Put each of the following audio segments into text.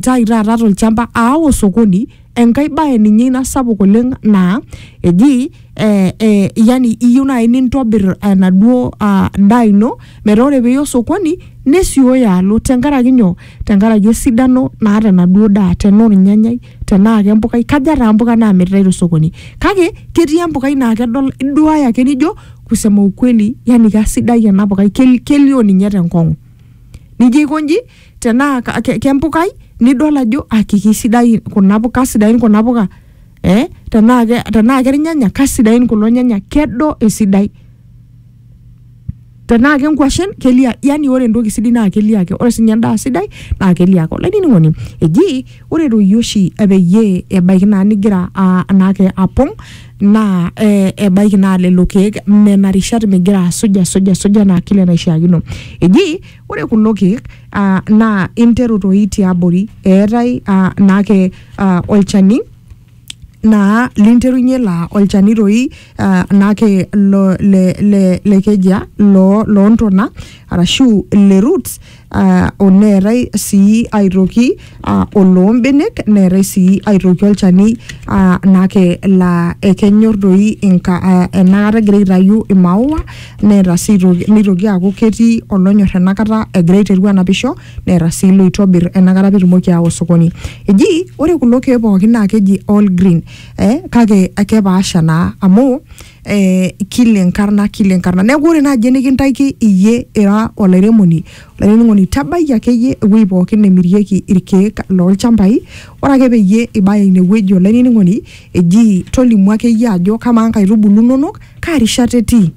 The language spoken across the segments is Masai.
tai taata tolchamba aawa osokoni enkae bae ninye ina sapuk oleng naa eji eh, eh, yani iyieu naaji nintobir enaduo ah, daa ino metaa ore piiya osokoni nesioyo alo tenkaraki nyoo tenkaraki esidano naata enaduo daa tenaa ornyanyai tenaa kempukai kaja taa mpuka namiritae tosokoni kake ketii empukai naa kedol iduaya ake nijo kusema ukweli yani kasidai ena pukai kel- kelio ninye tenkong'u nijo aikonji tenaa ka- ke- kempukai nidol ajo aki kisidai kuna puka sidain kuna puka eh? tenaa ke- tenaa kernyanya kasidain kulo nyanya kedo esidai tenaa kenkwashen kelia yani ore entoki sidai naa kelia ake ore sinye endaa sidai naa kelia ake olainining'oni eji ore doi oshi epeyie ebaiki naa nigira aa- anaake apong naa eh, ebaiki naa lelo keek nena rishat migira asuj asuj asuj anaa kile naishiakino eji Ore kulo keek uh, naa interu toi tiabori eetae uh, naake uh, olchani naa linterunye laa olchani toi uh, naake lo, le, le, le kejia loo loontona arashu le roots uh, oneetae sii aitoki uh, oloo mbenek neetae sii aitoki olchani uh, naake laa ekenyor doi inka uh, enakata egira aitayu imaua neeta sii aitoki nitoki aaku ketii olonyor enakata egira aiteru anapisho neeta sii loitobir enakata pitumoki aawa osokoni eji ore kulo keek pookin naa keji all green eh, kake kepaasha naa amu eh, kila enkarna kila enkarna neeku ore naaji enikintaiki iyie ira olairemoni olainining'oni tabaiki akeyie ewueji pookin nemirieki irkeek lolchambai ore ake peyie ibaya inewueji olainining'oni eji tolimu akeyie ajo kamaa nkaitubulu inonok kaa rishata etii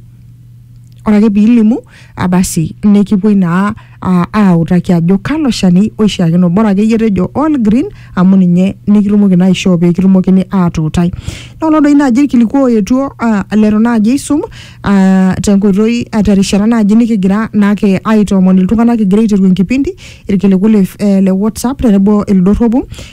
ore ake piilimu abasi nikipuoi naa aa- autaki ajo kalo shani oishiakino bora akeyie tejo all green amu ninye nikitumoki naa aishoo pekitumokini atuutai nolo doi naaji irkiliku oetuo aa, letu naaji aisum aa, tenkoitoi aa, terishata naaji nikigira naake aitoomon iltung'anak kigira aiteru enkipindi irkiliku le, eh, le whatsapp tenebo ildorropu